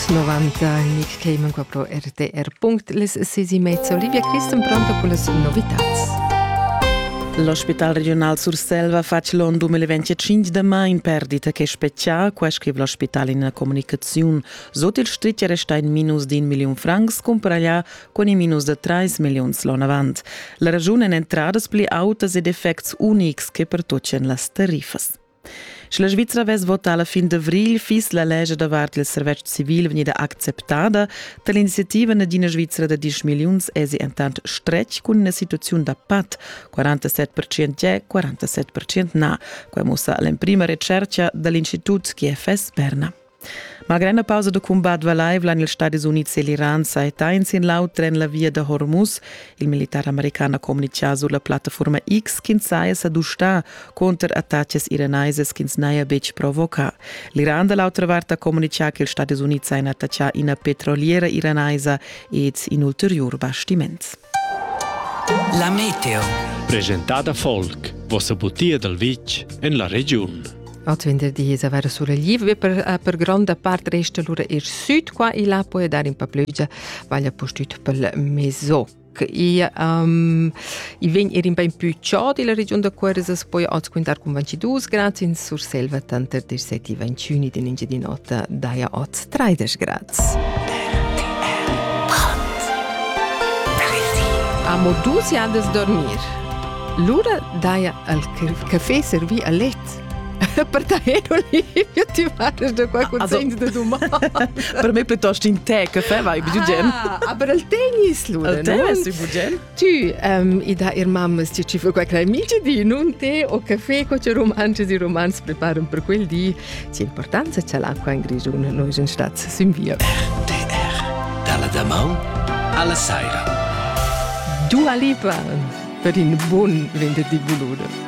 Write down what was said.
90 Mixtamen qua pro RTR. Les sesi mezza Olivia Christen pronta per las novitats. L'ospital regional Surselva fa l'on 2025 da mai in perdita che specchia, qua scrive l'ospital in una comunicazione. Sot il stritg resta in minus di un milion francs, compra là con i minus da 3 milioni l'on avant. La ragione è entradas pli autas ed effects unics che pertoccian las tarifas. Sche la Svizra vess votà la fin d'avrigl, fiss la lescha davart il servetsch civil vegnida acceptada. Da l'iniziativa d'ina Svizra da 10 milliuns èsi entant stretg cun ina situaziun da pat. 47% è, 47% na. Quai mussa l'emprima retschertga da l'Institut GFS Berna. Malgrad la pausa da cumbat valaivla en ils Stadis Unids e l'Iran saita in sin l'auter en la via da Hormuz. Il militar american ha communitgà sur la plattaforma X ch'ins saja sa dustà contro attacas iranaisas ch'ins n'haja betg provocà. L'Iran da l'autra vart ha communitgà che ils Stadis Unids hajan attaccà ina petroliera iranaisa ed in ulteriur bastiments. La meteo. Presentada Volk, vossa butia dal vitg en la regiun. At venderdi es avair sulegliv be per, eh, per gronda part resta lura ir süd qua e là puoi dar in pa plügia, vaglia pustüt pel mezzò i, um, i vegn er in bein più ciò della region da Cuersas, poi oz quintar con 22 gradi in Surselva, tanter 17 e 21 in Engiadinota daja oz 30 gradi. Amo dus jadas dormir. Lura daja al café servi a letto per te Olivia, ti parles de qua consegns de domani. per me piuttosto in te che fa vai bugen. Ah, aber il tennis lu, il tennis bugen. Tu um, i da ir mamma sti ci fa qua crei mici di non te o caffè co ci romanci di romans preparan per quel di. Ci importanza c'è l'acqua in grigione, noi sind statt sin via. RTR dalla Damau alla Saira. Dua Lipa per in buon venerdì bulude.